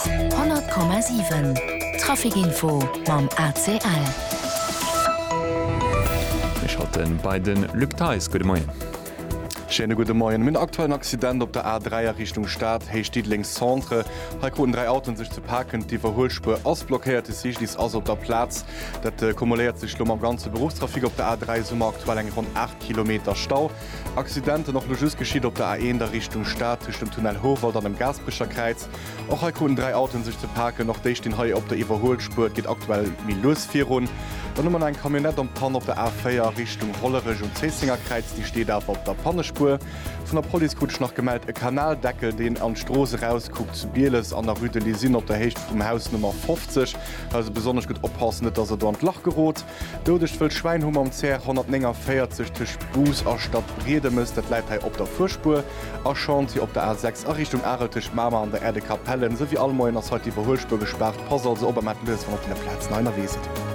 100,7 Traficinfo mam ACL. Mir schalte bei de Luc Theis. Gudde Moien. Schéine gudde Moien. Mir hunn aktuell en Accident op der A3 a Richtung Stad, Héicht Diddeleng Centre. Hei kruten dräi Autoen sech ze paken. D'Iwwerhuelspuer ass blockéiert, de Cyclist ass op der Plaz. Dat kumuléiert sech elo mam ganze Beruffstrafic op der A3, esou mer aktuell eng ronn 8 Kilometer Stau. Accidenten och lo just geschitt op der A1 a Richtung Stad tëscht dem Tunnel Houwald an dem Gaasperecherkräiz. Och hei kruten dräi Autoen sech ze paken. Och déi stinn hei op der Iwwerhuelspuer. Et geet aktuell méi lues virun. Dann hu mer nach eng Camionnette am Panne op der A4 a Richtung Hollerech um Zéisséngerkräiz. Déi steet awer op der Pannespuer. Vun der Police krut ech nach gemellt e Kanaldeckel, deen an d'Strooss erauskuckt zu Bieles an der Rue de l'Isine op der Héicht vum Haus Nummer 50. Hei also besonnesch gutt oppassen, net dass Der do an d'Lach gerot. Doudegt wëllt Schwäin hu mam CR 149 tëscht Bous a Stadbriedemes, dat läit hei op der Fuerspuer, a Chantier op der A 6 a Richtung Arel tëscht Mamer an der Aire de Capellen. Esou wéi all Moien ass hei d'Iwwerhuelspuer gespaart. Passt also op a maacht lues, wann der op deene Plazen hei ënnerwee sidd.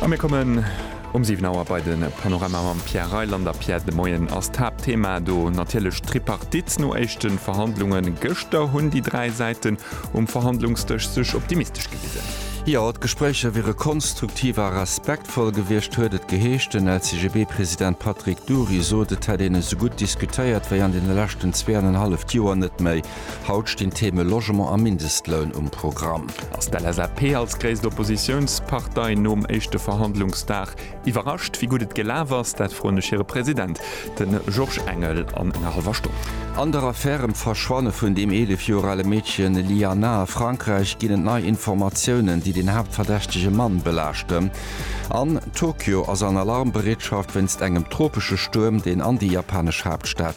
A mir kommen Um 7 Auer bei de Panorama mam Pierre Reyland a Pierre de Moien ass d'Haaptthema do natierlech d'Tripartite. No éischte Verhandlunge gëschter hunn déi dräi Säiten um Verhandlungsdësch sech optimistesch gewisen. Jo, d'Gespréicher wiere konstruktiv a respektvoll gewiescht, huet et geheescht. Den LCGB-President Patrick Dury sot, et hätt een esou gutt diskutéiert wéi an deene leschten zwee an en halleft Joer net méi. Haut stinn d'Theme Logement a Mindestloun um Programm. Ass d'LSAP als gréisst Oppositiounspartei nom éischte Verhandlungsdag iwwerrascht? Wéi gutt et gelaf ass, dat froen ech hire President, de Georges Engel, an enger hallwer Stonn. An der Affär ëm d'Verschwanne vun deem 11 Joer ale Meedchen Lyana a Frankräich ginn et nei Informatiounen, déi den haaptverdächtege Mann belaaschten. An Tokio ass an Alarmbereetschaft wéinst engem tropesche Stuerm, deen an déi japanesch Haaptstad